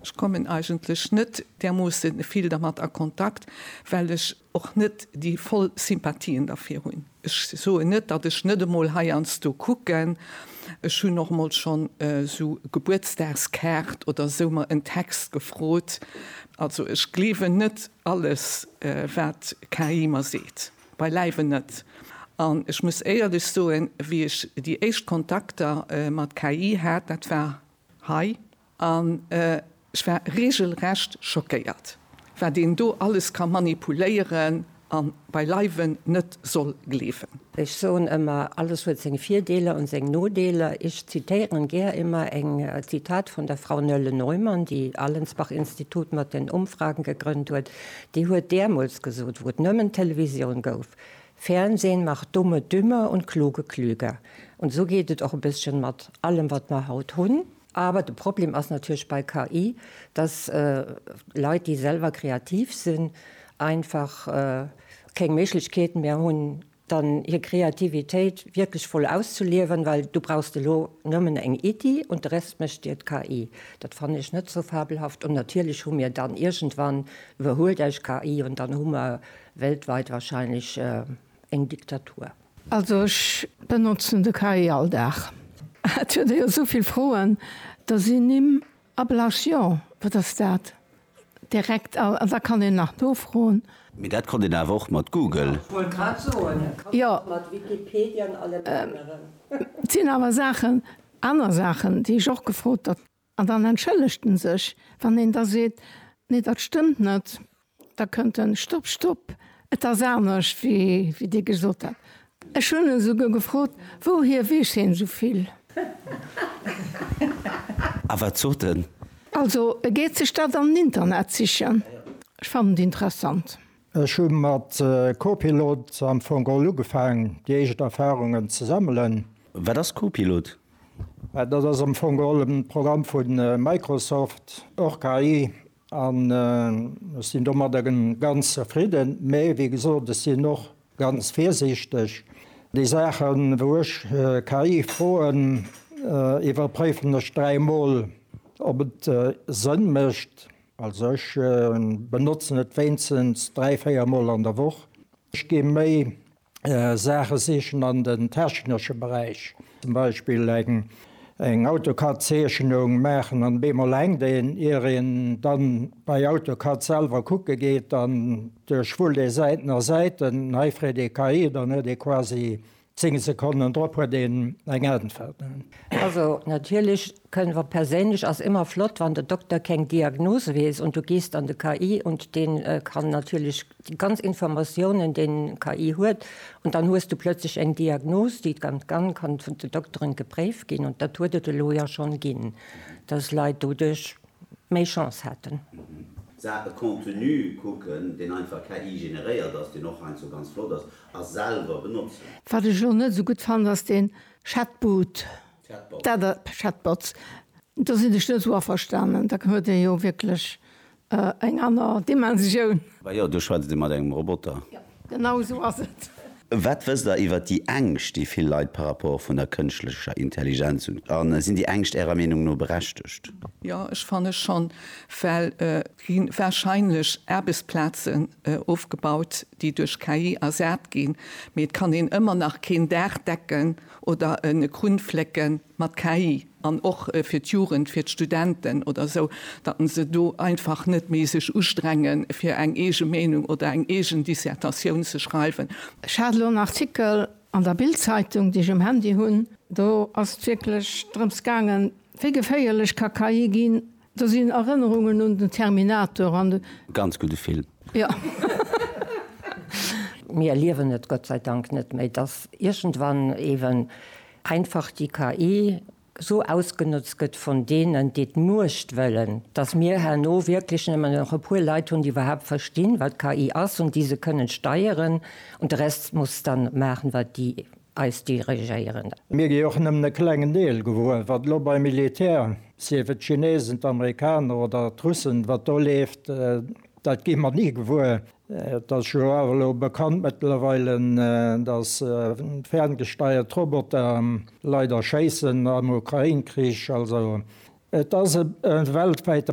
Ech kommen eigentlech net därmoosse vill dermat a Kontakt, well ech och net déi voll Sympathien derfir hunn. Ech soen net, datt ech net emol heiansdo kucken, ech hunn och emol schonn esou Gebuertsdagskaart oder esou mer en Text gefrot. Also ech gleewen net alles wat KI mer seet, beileiwen net. An ech muss éierlech soen, wéi ech déi éischt Kontakter mat KI hat, dat war hei An ech war regelrecht schockéiert, wat een do alles ka manipuléieren a beileiwen net soll gleewen. Ech soen ëmmer, alles huet seng Virdeeler an seng Nodeeler. Ech zitéieren gär ëmmer eng Zitat vun der Frau Nölle-Neumann, déi Allensbach-Institut mat den Umfragen gegrënnt huet. Déi huet däermols gesot, wou et nëmmen Televisioun gouf, Fernsehen macht Dumme dümmer und Kluge klüger. An esou geet et och e bësschen mat allem, wat mer haut hunn. Awer de Problem ass natierlech bei KI, dass Leit, déi selwer kreativ sinn, einfach keng Méiglechkeet méi hunn, dann hir Kreativitéit wierklech voll auszeliewen, well du brauchst elo nëmmen eng Iddi und de Rest mécht dir d'KI. Dat fannen ech net sou fabelhaft. Und natierlech hu mir dann iergendwann, iwwerhuelt eis KI, und dann hu mer weltweit wahrscheinlech eng Diktatur. Also ech benotzen de KI all Dag. Hat huet e jo esou vill Froen, da si Nimm a Blasch jo, wat ass dat? direkt a wat kann een nach nofroen? Mee dat konnt een awer och mat Google. Jo, et sinn awer Saachen, aner Saachen, déi ech och gefrot. An dann entschëllegt en sech. Wann een da seet, Nee, dat stëmmt net, da kënnt en, Stopp, stopp, et ass anescht, wéi Dir gesot hat. Ech hunn e souguer gefrot, Wouhier weess hien esou vill? A wat sot en? Also, e geet sech dat am Internet sichen. Ech fannen et interessant. Ech hu mat Copilot am Fong all ugefaang, déi éischt Erfarungen ze sammelen. Wat ass Copilot? Dat ass am Fong all e Programm vu Microsoft, och KI, an ech sinn domadder ganz zefridden. Mee wéi gesot, ech sinn och ganz virsiichteg. Déi Saachen, wou ech KI froen, iwwerpréifen ech dräi Mol, ob et Sënn mécht. Also ech benotzen et wéinstens dräi, véier Mol an der Woch. Ech gehe méi Saache sichen an den technesche Beräich. Zum Beispill eng AutoCAD-Zeechnung maachen an op eemol hänkt een. Ier een dann bei AutoCAD selwer kucke geet an duerchwullt ee Säiten a Säiten, hei freet ee KI, dann huet ee quasi Zéng Sekonnen drop huet een eng Äntwert. Also natierlech kënnen mer perséinlech, ass ëmmer flott wann de Dokter keng Diagnose weess und du gehst an de KI und deen kann natierlech déi ganz Informatiounen deen KI huet und dann hues du plötzlech eng Diagnose déi dann kann kann vun de Dokteren gepréift ginn und dat huet et elo jo schonn ginn dass Leit doduerch méi Chance haten. Saache Contenu kucken deen einfach KI generéiert ass deen och heiansdo ganz flott ass A selwer benotzen. Wat ech elo net esou gutt fannen, ass deen Chatboot. Chatbots. Dat a, Chatbots. Do sinn ech net esou averstanen. Da huet ee jo wierklech eng aner Dimensioun. Mä jo, do schwätzt ee mat engem Roboter. Jo, genau esou ass et. Wat wësst Der iwwer déi Ängscht, déi vill Leit par rapport vun der kënschtlecher Intelligenz hunn? A sinn déi Ängscht Ärer Meenung no berechtegt? Jo, ech fanne schonn, well et gi warscheinlech Aarbechtsplazen ofgebaut, déi duerch KI ersat ginn, mee et kann een ëmmer nach keen Daach decken oder e Krunn flécke mat KI. An och fir d'Jugend, fir d'Studenten oder esou, datt en se do einfach net méi sech ustrenge fir eng eege Meenung oder eng eegen Dissertatioun ze schreiwen. Ech hat elo en Artikel an der Bild-Zeitung, déi ech um Handy hunn, do ass et wierklech drëms gaangen, wéi geféierlech ka KI ginn, Do sinn Erënnerungen un den Terminator an de. Ganz gudde Film. Jo. Mir erliewen et Gott sei Dank net méi, dass iergendwann eeben einfach déi KI esou ausgenotzt gëtt vun deenen, déi d'Muecht wëllen, dass mir herno wierklech nëmmen nach e puer Leit hunn, déi iwwerhaapt verstinn, wat KI ass, an déi se kënnen steieren, an de Rest muss dann maachen, wat déi eis dirigéieren. Mir gi och nëmmen e klengen Deel gewuer, wat elo beim Militär, sief et d'Chinesen, d'Amerikaner oder d'Russen, wat do leeft, dat gi mer ni gewuer. Et ass jo awer elo bekannt mëttlerweilen, datt ferngesteiert Roboter Leit erschéissen am Ukrain-Krich. Also et ass e weltwäite.